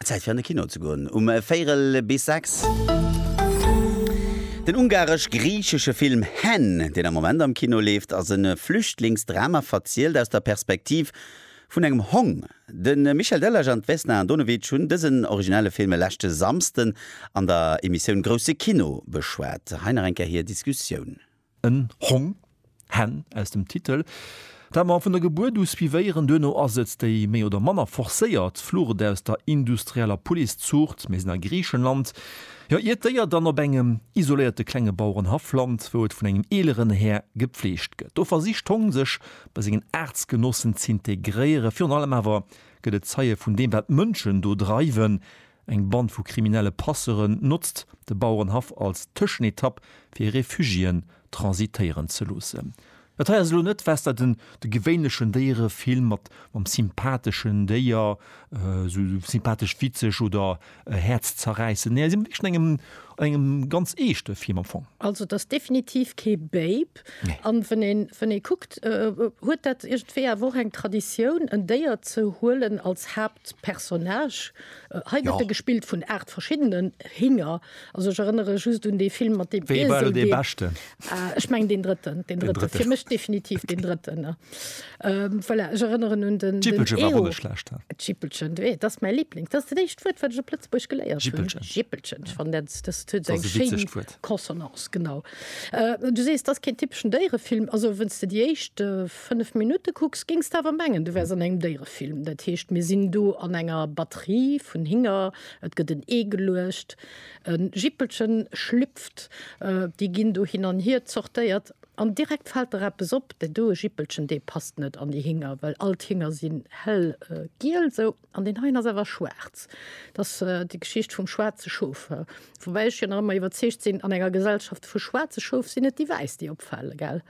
Zäit fir an de Kino ze goen um Véirel bis sechs. Den ungaresch-griichesche Film Hen, deen am Moment am Kino leeft, ass e Flüchtlingsdrama, verzielt aus der Perspektiv vun engem Hong. De Michel Delage an d'Vesna Andonovic hunn dësen originelle Film e leschte Samsden an der Emissioun Grousse Kino beschwat. Hei nach eng Kéier hir Diskussioun. En Hong, Hen aus dem Titel, dat mer vun der Gebuert u suivéieren. Duerno ass et déi méi oder manner forcéiert Flucht aus der industrieller Policezuucht. Mir sinn a Griichenland, jo, iert Déier dann op engem isoléierte klenge Bauerenhaff lant, wou et vun engem eeleren Här gepfleegt gëtt. Do versicht d'Hong sech bei sengen Aartsgenossen z'integréieren. Virun allem awer gëtt et Zeie vun deem, wat d'Mënschen do dreiwen, Eng Band vu kriminelle Passeuren notzt de Bauerenhaff als Tëschenetapp fir Refugiéen transitéieren ze loossen. Dat hei ass elo net wesder den de gewéinlechen Déierefilm mat mam sympatheschen Déier, sou sympathesch witzeg oder häerzzerräissend, nee hei si mer wierklech an engem an engem ganz eeschte Film am Fong. Also et ass definitiv kee Babe an wann een wann ee kuckt huet dat iergendwéi awer och eng Traditioun en Déier ze huelen als Haaptpersoun. Personnage. Hei gëtt e gespillt vun 8 verschiddenen Hinger. Also ech erënnere just un dee Film mat deem Iesel, dee. Ech mengen deen drëtten, deen drëtten. Fir mech definitiv deen drëtten. Voilà, ech erënneren un den. Jippelchen war och net schlecht. Jippelchen, dat ass mäi Liblings. Dat ass dat éischt Wuert, wat ech op Lëtzebuergesch geléiert hunn. Jippelchen. Jippelchen. Ech fannen dat, dat huet esou eng schéin Consonance, genau. Du sees, dat ass keen typeschen Déierefilm. Also wenn's de déi éischt 5 Minutte kucks, géings de awer mengen, du wäers an engem Déierefilm. Dat heescht, mir sinn do an enger Batterie vun Hinger, et gëtt en Ee geluecht, e Jippelchen schlüpft, déi ginn do hin an hier zortéiert an direkt fält der eppes op, dat do, e Jippelchen, dee passt net an déi Hinger, well all d'Hinger sinn hellgiel, sou. An deen heien ass awer schwaarz. Et ass déi Geschicht vum schwaarze Schof. Woubäi ech jo nach ëmmer iwwerzeegt sinn, an enger Gesellschaft vu schwaarze Schof sinn et déi Wäiss, déi opfale, gell?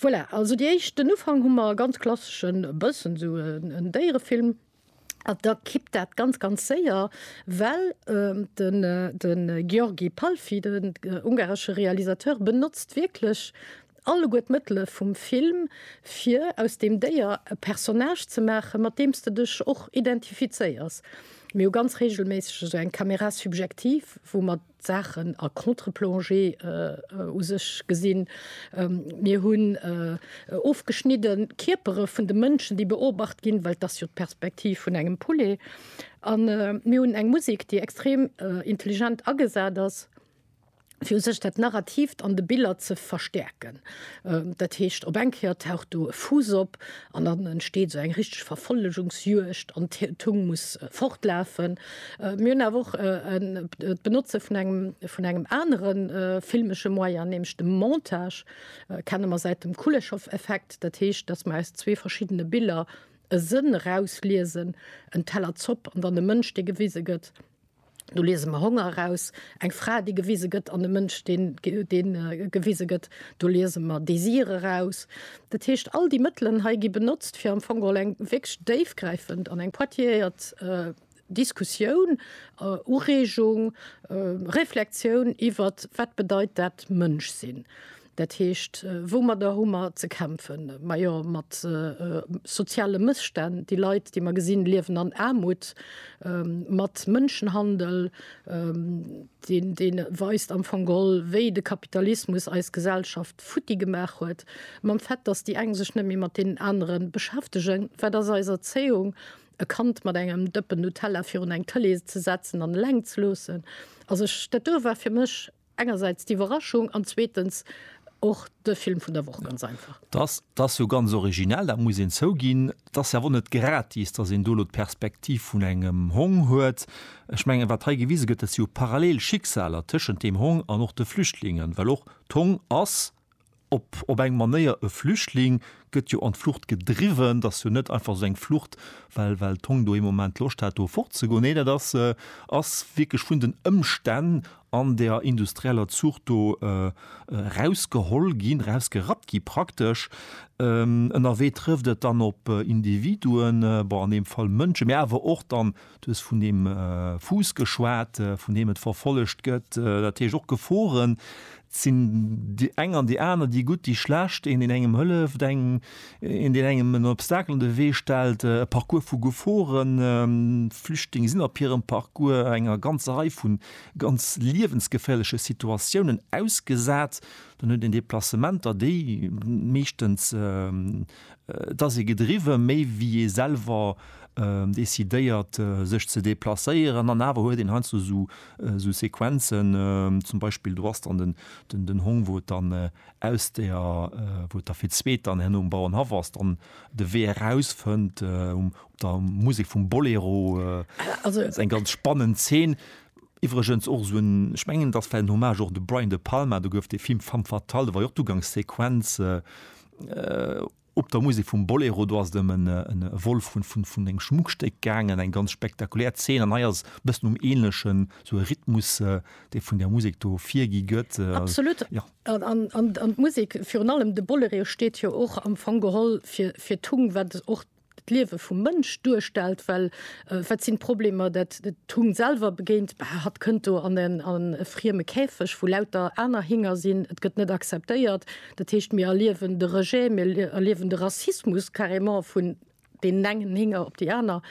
Voilà, also déi éischt, den Ufank hu mer e ganz klasseschen, e bëssen esou en Déierefilm. An da kippt dat ganz, ganz séier, well de György Palffy, den ungaresche Realisateur, benotzt wierklech, Alleguer d'Mëttele vum Film, fir aus deem Déier e Personnage ze maachen, mat deem s de dech och identifizéiers. Mir hu ganz reegelméisseg esou eng Caméra subjective, wou mer d'Saachen a Contre-plongée u sech gesinn. Mir hunn ofgeschnidde Kierpere vun de Mënschen, déi beobacht ginn, well et ass jo d'Perspektiv vun engem Poulet. A mir hunn eng Musek, déi extrem intelligent agesat ass. fir u sech dat Narrativt an de Biller ze verstäerken. Dat heescht, op eng Kéier taucht do e Fuuss op an dann entsteet esou eng richteg Verfollegungsjuegd an d'Tung muss fortlafen. Mir hunn awer och d'Benotze vun engem vun engem anere filmesche Moyen, nämlech dem Montage, kenne mer säit dem Kuleshov-Effekt. Dat heescht, datt mer aus zwee verschiddene Biller e Sënn erausliesen, en Teller Zopp an dann e Mënsch, dee gewise gëtt. Do liese mer Honger eraus, eng Fra, déi gewise gëtt an e Mënsch, deen gewise gëtt. Do liese mer Désir eraus. Dat heescht, all déi Mëttelen hei gi benotzt, fir am Fong geholl eng wierklech déifgräifend an eng pointilleéiert Diskussioun, Ureegung, Reflexioun iwwert, Wat bedeit dat Mënschsinn? Dat heescht, woumadder hu mer ze kämpfen? Majo mat soziale Mësstänn. Déi Leit, déi mer gesinn, liewen an Aarmut, mat Mënschenhandel, deen, deen weist am Fong gol, wéi de Kapitalismus eis Gesellschaft futti gemaach huet, mam Fait, datt déi eng sech net méi mat deenen anere beschäftegen. Wat ass eis Erzéiung? E Kand mat engem Dëppen Nutella virun eng Tëlee ze setzen an eleng ze loossen. Also ech, dat do war fir mech. Engersäits d'Iwwerraschung an zweetens och de Film vun der Woch, ganz einfach. Dat, dat ass jo ganz originell, dat muss een zouginn. Et ass awer och net gratis, datt een do elo d'Perspektiv vun engem Hong huet. Ech mengen, wat hei gewise gëtt, dat si jo parallel Schicksaler tëschent deem Hong an och de Flüchtlingen, well och d'Hong ass, op op eng Manéier e Flüchtling gëtt jo an d'Flucht gedriwwen. T'ass jo net einfach esou eng Flucht, well well d'Hong do ee Moment Loscht hat do fortzegoen. Nee, dat ass ass wierklech vun den Ëmstänn an der industrieller Zuucht do erausgeholl ginn, erausgerappt gi praktesch. Ënnerwee trëfft et dann op Individuen, bon an deem Fall Mënsche, mä awer och dann Du hues vun deem Fuuss geschwat, vun deem et verfollegt gëtt, dat heescht och Geforen. Et sinn déi eng an déi aner, déi gutt, déi schlecht, een, deen engem hëlleft, eng, een, deen engem en Obstacle an de Wee stellt, e Parcours vu Geforen. Flüchtlinge sinn op hirem Parcours enger ganzer Rei vu ganz liewensgeféierleche Situatiounen ausgesat. Dann huet een Deplacementer, déi meeschtens Et ass ee gedriwwe méi wéi ee selwer decidéiert sech ze deplacéieren an awer huet een heiansdo sou Sequenzen, zum Beispill do ass dann den Hong wou et dann aus der, wou et da fir d'zweet dann herno um Bauernhaff ass, dann de Wee eraus fënnt op der Musek vum Bolero. Et ass eng ganz spannend Zeen. Iwwregens och sou en, ech mengen et ass vläicht en Hommage och u de Brian De Palma, do gouf dee Film Femme fatale, do war jo och d'Ugangssequenz, Op der Musek vum Bolero, do ass et ëm e Vol vun engem Schmuckstéck gaangen, eng ganz spektakulär Zeen. An hei ass e bëssen um Änlechen, esou e Rhythmus, dee vun där Musek do virgi gëtt. Absolut. An d'Musek, virun allem de Bolereo, steet jo och am Fong geholl fir d'Tung, wat och. d'Liewe vum Mënsch duerstellt, well wat sinn d'Problemer, dat d'Hung selwer begéint, Bah, hatt kënnt do an e frieme Käfeg, wou lauter aner Hinger sinn, et gëtt net acceptéiert. Dat heescht, mir erliewen de Rejet, mir erliewen de Rassismus carrément vun deenen engen Hinger op déi aner.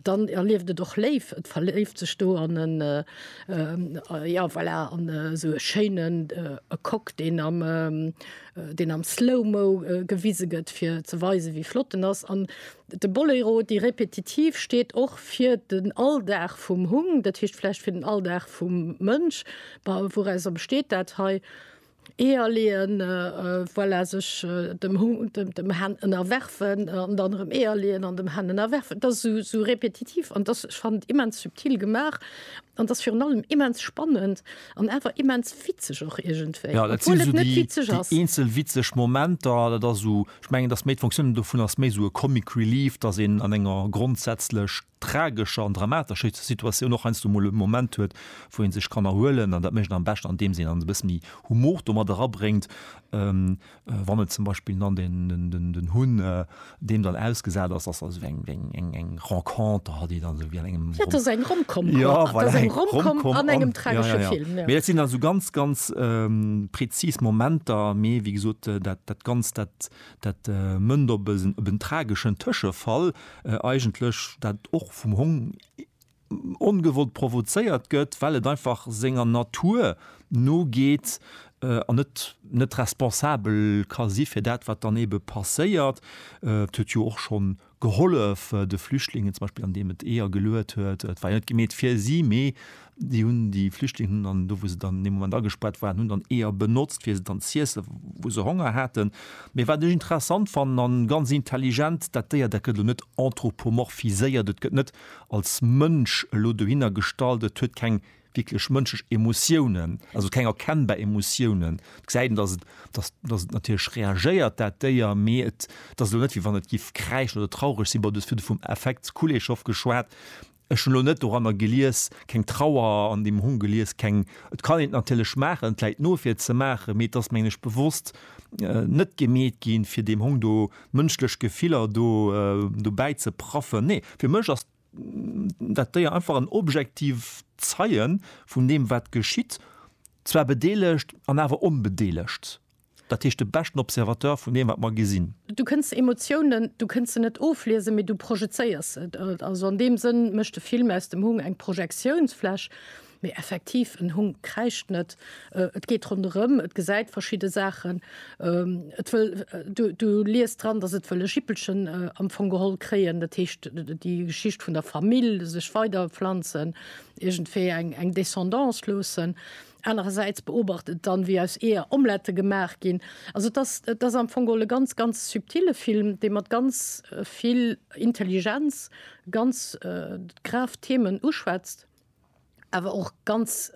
Dann erlieft et och léif, et verléift sech do an en, jo voilà, an esou e schéinen Coq, deen am, deen am Slow-Mo gewise gëtt, fir ze weisen, wéi flott en ass. An de Boléro, déi Repetitiv, steet och fir den Alldag vum Hung, dat heescht vläicht fir den Alldag vum Mënsch. Wourauser besteet dat hei? Eeër leeën, voilà, sech dem Hund, dem Hen ënnerwerfen an dann erëm Eeër leeën an dem Hen ënnerwerfen. Et ass esou, esou repetitiv an dass, ech fannen et immens subtil gemaach an dass virun allem immens spannend an awer immens witzeg och iergendwéi, obwuel et net witzeg ass. Jo, dat sinn esou déi eenzel witzeg Momenter. Dat ass esou, ech mengen, et ass méi, d'Fonctioun dovun ass méi esou e Comic Relief, dass een an enger grondsätzlech tragescher an dramatescher Situatioun och heiansdo mol e Moment huet, wou ee sech kann erhuelen. An dat mécht een am beschten, andeems een e bësse méi Humor do mat erabréngt. Wann et zum Beispill dann den Hunn deem dann ausgesat ass, ass esou eng Renconter hat, déi dann esou wéi an engem, jo, et ass eng Rom-Com, jo, voilà, eng Rom-Com an engem tragesche Film. Mee dat sinn also ganz, ganz prezis Momenter. Mee wéi gesot, dat Ganzt, dat. Dat mënnt op en trageschen Tëschefall eigentlech, dat och vum Hong ongewollt provozéiert gëtt, well et einfach senger Natur nogeet an et net responsabel ka si fir dat, wat dann eebe passéiert. Et huet jo och schonn gehollef de Flüchtlingen zum Beispill an deem et Eeër geluet huet, et war jo net gemeet fir si, mee déi hunn déi Flüchtlingen hunn dann do wou se dann an deem Moment agespaart waren, hunn dann Eeër benotzt fir se dann z'iessen wou se Honger haten. Mee wat ech interessant fannen an ganz intelligent, dat Déier dat gëtt elo net anthropomorphiséiert, et gëtt net als Mënsch elo dohinner gestallt, et huet keng wierklech mënschlech Emotiounen, also keng erkennbar Emotiounen. Et gesäit een, datt et, datt, datt et natierlech reagéiert, dat Déier, mee et, et ass elo net, wéi wann et géif kräischen oder traureg sinn. Bon, du hues virdru vum Affekt Kuleshov geschwat. Ech hunn elo net doranner gelies, keng Trauer an deem Hong gelies, keng, et kann een et natierlech maachen, et läit no, fir et ze maachen, mee et ass, mengen ech, bewosst net gemeet ginn, fir deem Hong do mënschlech Gefiller do, dobäi ze praffen. Nee, fir mech ass. dat Déier einfach en objektiv Zeien vun deem wat geschitt, zwar bedeelegt an awer onbedeelegt, dat heescht de beschten Observateur vun deem wat mer gesinn. Du kënns Emotiounen, du kënns se net ofliesen, mee du projezéiers se. Also an deem Sënn mécht de Film aus dem Hung eng Projektiounsfläch. Mee effektiv, en Hung kräischt net. Et geet ronderëm, et gesäit verschidde Saachen, et wëll, du liest dran, datt et wëll e Jippelchen am Fong geholl kréien, dat heescht déi Geschicht vun der Famill, sech weiderpflanzen, iergendwéi eng Descendance loossen. Anerersäits beobacht et dann, wéi aus Eeër Omlette gemaach ginn. Also et ass, et ass am Fong geholl e ganz, ganz subtile Film, dee mat ganz vill Intelligenz ganz grave Themen uschwätzt. awer och ganz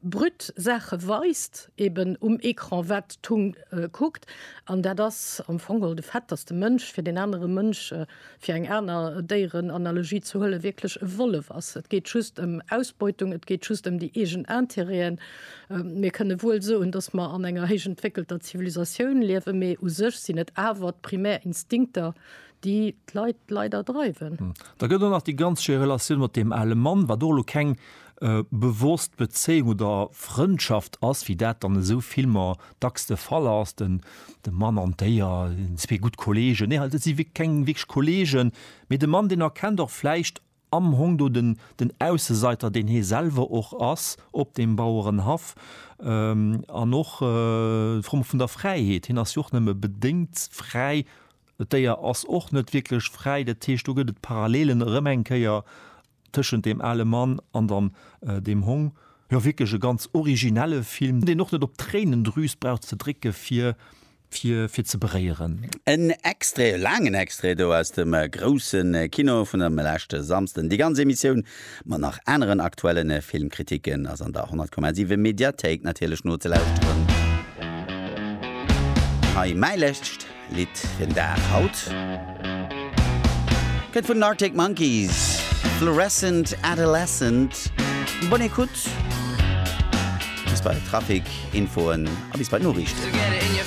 brut Saache weist eben um Ecran, wat d'Hung kuckt. An dat ass am Fong de Fait, datt de Mënsch fir deen anere Mënsch, fir eng aner Déierenanalogie ze huelen, wierklech e Wollef ass. Et geet just ëm Ausbeutung, et geet just ëm déi eegen Interêten. Mir kënne wuel soen, datt mer an enger héichentwéckelter Zivilisatioun liewen, mee u sech sinn et awer d'primär Instinkter, déi d'Leit leider dreiwen. Hm. Da gëtt och nach déi ganz schéi Relatioun mat deem ale Mann, wat och elo keng äh, bewosst Bezéiung oder Frëndschaft ass, wéi dat dann esou Filmer dacks de Fall ass, den, de Mann an d'Déier, zwee gutt Kollegen. Nee, dat si wierklech keng wierklech Kollegen, mee de Mann, deen erkennt och vläicht, Am hong do den den Ausseseiter, deen hee selwer och ass, op deem Bauerenhaff. An och d'Fro vun der Fräiheet, hien ass jo och nëmme bedéngt fräi, d'Déier ass och net wierklech fräi. Dat heescht, do gëtt et Parallelen erëm eng Kéier tëschent deem ale Mann an dann deem Hong. Jo, wierklech e ganz originelle Film, deen och net op d'Tréinendrüs brauch ze drécke fir fir fir ze beréieren. En Extrait, e laangen Extrait do aus dem grousse Kino vun ëm leschte Samsden. Déi ganz Emissioun mat nach aneren aktuellen Filmkritiken ass an der 100,7 Mediathéik natierlech nozelauschteren. Hei mäi lescht Lidd fir den Dag haut kënnt vun den Arctic Monkeys, Fluorescent Adolescent. Bonne écoute, bis bei Trafic, Infoen a bis bei d'Noriichten.